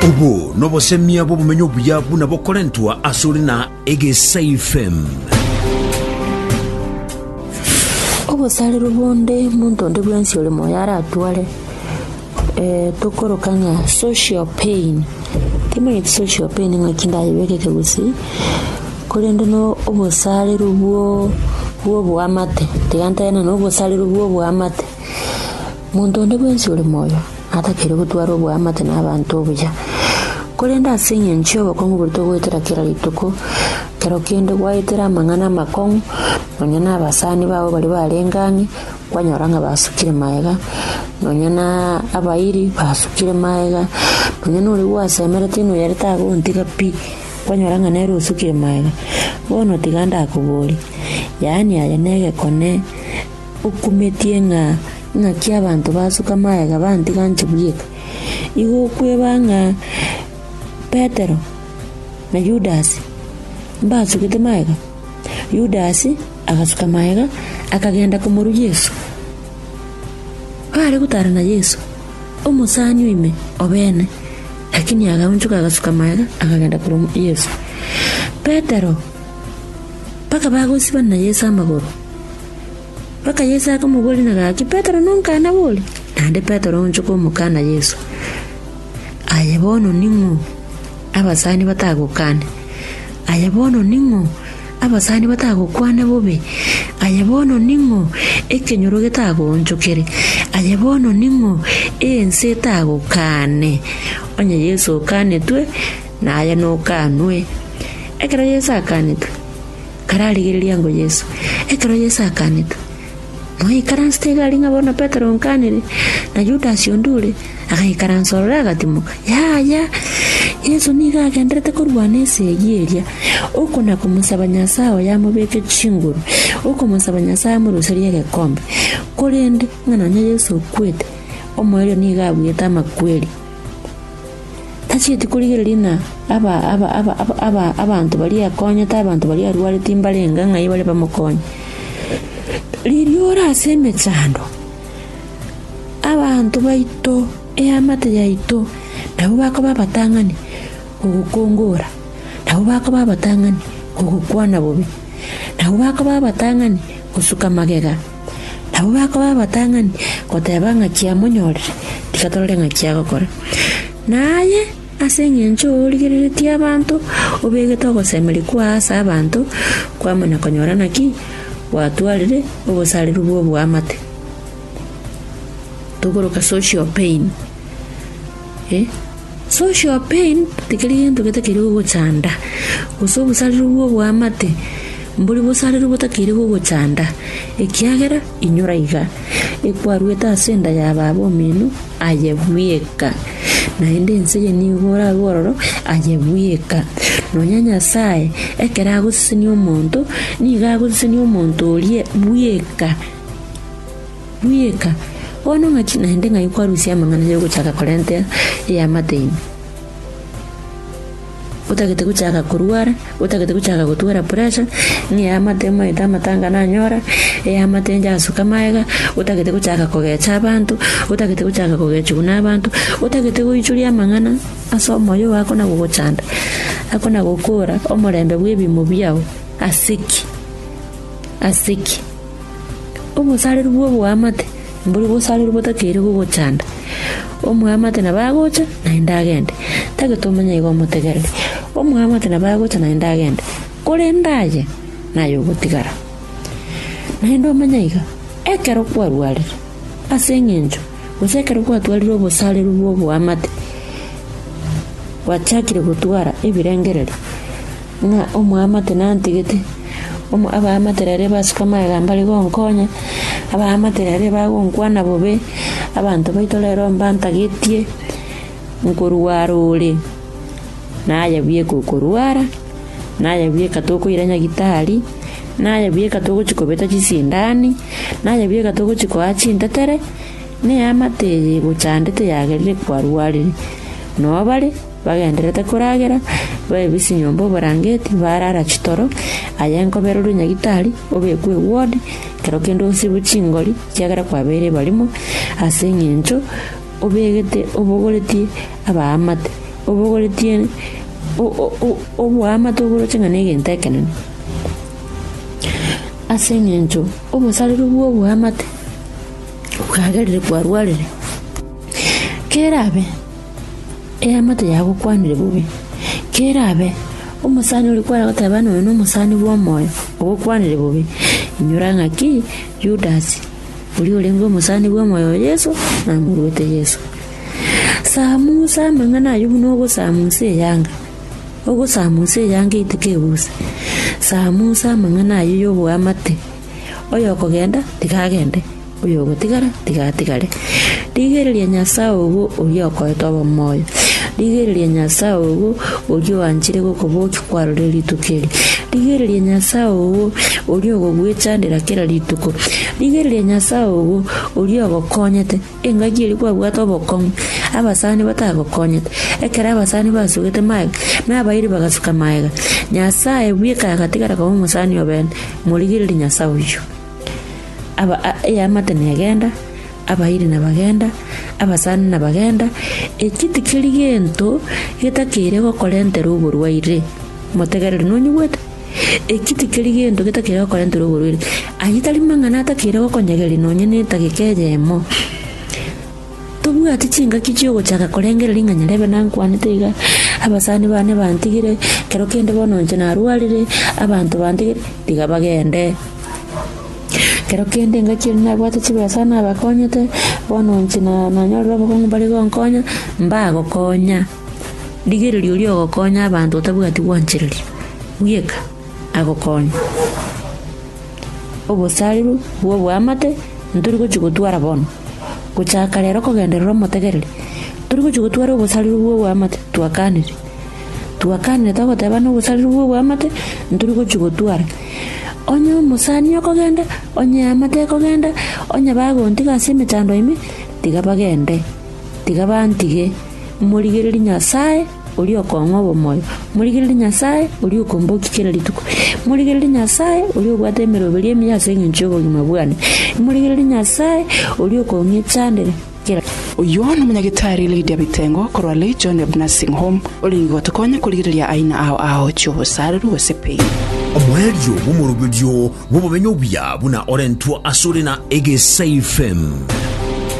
Obo nobosemia bw'obomenyo obuya buna bokorentwa asore na Egesaifem. Obosarero bonde monto onde bwensi ore moyo aratware eh, tokoroka ng'a social pain timanyeti social pain ng'aki ndayebekete gose korende no obosarero bwo bw'oboamate tiga ntaena na obosarero bw'oboamate Monto onde bwensi ore moyo atakeire gotwara oboamate nabaanto obuya, korende ase engencho y'obokong'u bore togoetera kera rituko kero kende gwaetera amang'ana amakong'u, nonya nabasani babo baria barenge ang'e kwanyora ng'a basukire magega, nonya na abairi basukire magega, nonya noria gwasemerete inwe ere tagontiga pi, kwanyora ng'a nere osukire magega. Bono tiga ndakobori, yaani aye negekone. Okumetie ng'a naki abanto basuka magega bantiga inche bweka, igo okweba ng'a Petero na Yudasi mbasugete magega? Yudasi agasuka magega akagenda komoru Yeso. Baare gotara na Yeso, omosani o ime o bene, lakini agaunchoka agasuka magega akagenda koru Yeso. Petero, mpaka bagosibana na Yeso amagoro. Bakaye Yeso akamoboria na gaki, Petero nonkana bori? Naende Petero onchoka omokana Yeso, Aye bono ning'o, abasani batagokane? Aye bono ning'o, abasani batagokwane bobe? Aye bono ning'o, ekenyoro getagoonchokere? Aye bono ning'o, ense etagokane? Onye Yeso okanetwe, naye nokanwe. Ekero Yeso akanetwe, kararigereria ango Yeso. Ekero Yeso akanetwe, moikaransete egari ng'a bono Petero onkanire, na Yudas onde ore, agaikaransa ororo agatimoka. Yaya! Yeso nigo agendererete korwa na esegi eria, oko na komosaba Nyasae oye amobeke chinguru, okomosaba Nyasae amoruserie egekombe. Korende, ng'a nonya Yeso okwete, omoerio nigo abwete amakweri. Tachieti korigereria ng'a abanto baria akonyete abanto baria arwarete mbarenge ng'ai bare bamokonye. Riria ore ase emechando, abanto baito, eamate yaito, nabo bakoba abatang'ani gogokongora, nabo bakoba abatang'ani gogokwana bobe, nabo bakoba abatang'ani gosuka magega. Nabwo bakoba abatang'ani, goteba ng'aki amonyorire, tiga torore ng'aki agokora. Na aye ase engencho origereretie abanto, obegete ogosemeria kwao ase abanto, kwamanya konyora naki gwatwarire obosareru bw'oboamate. Tokoroka social pain. Social pain tikeri gento getakeire gogochanda, gose obosarero bw'oboamate mbori bosarero botakeire gogochanda, ekiagera inyora iga ekwarwete ase enda ya baba omino, aye bweka, naende ense eye nigo orabe ororo, aye bweka. Nonya Nyasae ekero agosesenia omonto, nigo agosesenia omonto oria bweka. Rieka, bono ng'a chi naende ng'ai kwarusia amang'ana y'ogochaka korenta eamate ime? Otagete gochaka korwara, otagete gochaka gotwara pressure, ng'a eamate omaete amatanga nanyora, eamate njasuka magega, otagete gochaka kogecha abanto, otagete gochaka kogechigwa na abanto, otagete goichoria amang'ana ase omoyo oo akona gogochanda, akona gokora omorembe bw'ebiimo biao ase ki? Ase ki? Obosareru bw'oboamate mbori bosareru botakeire gogochanda. Omoamate nabo agocha, naende agende, tagete omonye igo omotegerere. Omoamate nabo agocha naende agende, korende aye naye ogotigara. Naende omenye iga, ekero kwarwarire ase engencho, gose ekero kwatwarire obosareru bw'oboamate, gwachakire gotwara ebirengererio. Na omoamate nantigete, omo abaamate raria basuka amagambo are gonkonya, abaamate raria bagonkwana bobe, abanto baito rero mbantagetie nkorwa arore, na aye bweka okorwara, na aye bweka tokoira nyagitari, na aye bweka togochi kobeta chisindani, na aye bweka togochi koa chintetere, na eamate eye egochandete yagerire kwarwarire. Noo bare. Bagendererete koragera, baebise nyomba oborangeti, barara chitoro, aye enkoba erorwe nyagitari, obekwe eward, kero kende osibwe chingori, ekiagera kwabeire barimo, ase engencho obegete obogoretie abaamate, obogoretie o- o- o- oboamate oboroche ng'a negento ekenene. Ase engencho obosareri bw'oboamate bwagerire kwarwarire. Kerabe. eamate yagokwanire bobe, kerabe omosani oria kware goteba ng'a oyo nomosani bw'omoyo ogokwanire bobe, inyora ng'aki Yudas, oria orenge omosani bw'omoyo o Yeso, namoruete Yeso. Samusa amang'ana ayio buna ogosamusa eyanga, ogosamusa eyanga etuko ebusa, samusa amang'ana ayio y'oboamate, oyokogenda, tiga agende. Oyogotigara tiga atigare. Rigereria Nyasae ogo oria okoete obomoyo, rigereria Nyasae ogo oria oanchire gokobokia kwarorire rituko eri. Rigereria Nyasae ogo oria ogogwechandera kera rituko, rigereria Nyasae ogo oria ogokonyete engaki eria kwabwate obokong'u abasani batagokonyete. Ekero abasani basugete magega, nabairi bagasuka magega. Nyasae bweka agatigara koba omosani obe ene, morigererie Nyasae oyio. Aba- a- eamate negenda, abairi nabagenda, abasani nabagenda, eki tikeri gento getakeire gokorentera oborwaire. Motegerere, nonyigwete? Eki tikeri gento getakeire gokorentera oborwaire. Ayio tari mang'ana atakeire gokonyegeria nonye na etageka eyemo. Tobwati chingaki chi'ogochaka korengera ring'ana riabe nankwanete iga, abasani bane bantigire, kero kende bono inche narwarire, abanto bantigire, tiga bagende. Kero kende engaki eria nabwate chibesa nabakonyete, bono inche nanyorire obokong'u mbare gonkonya, mbagokonya. Rigereria oria ogokonya abanto otabwati gwanchereria, bweka agokonye. Obosariru bw'oboamate ntori gochi gotwara bono. Gochaka rero kogenderera omotegereri, tori gochia gotwara obosareri bw'oboamate twakanire. Twakanire togotebana obosareri bw'oboamate ntori gochia gotwara. Onye omosani okogenda, onye eamate ekogenda, onye bagontiga ase emechando ime, tiga bagende. Tiga bantige. Morigererie Nyasae. oria okong'wa obomoyo, morigererie Nyasae, oria okombokia kera rituko, morigererie Nyasae, oria obwate emeroberio emiya ase engencho y'obogima bwane, morigererie Nyasae, oria okong'echandera kera kende. Oyio nomonyagitari Lydia Bitengo korwa Legion of Nursing Home orenge gotokonya korigereria aina ao ao chi'obosareru gose pain. Omoerio bw'omoroberio bw'obomenyo obuya buna orentwa asore na Egesaifem.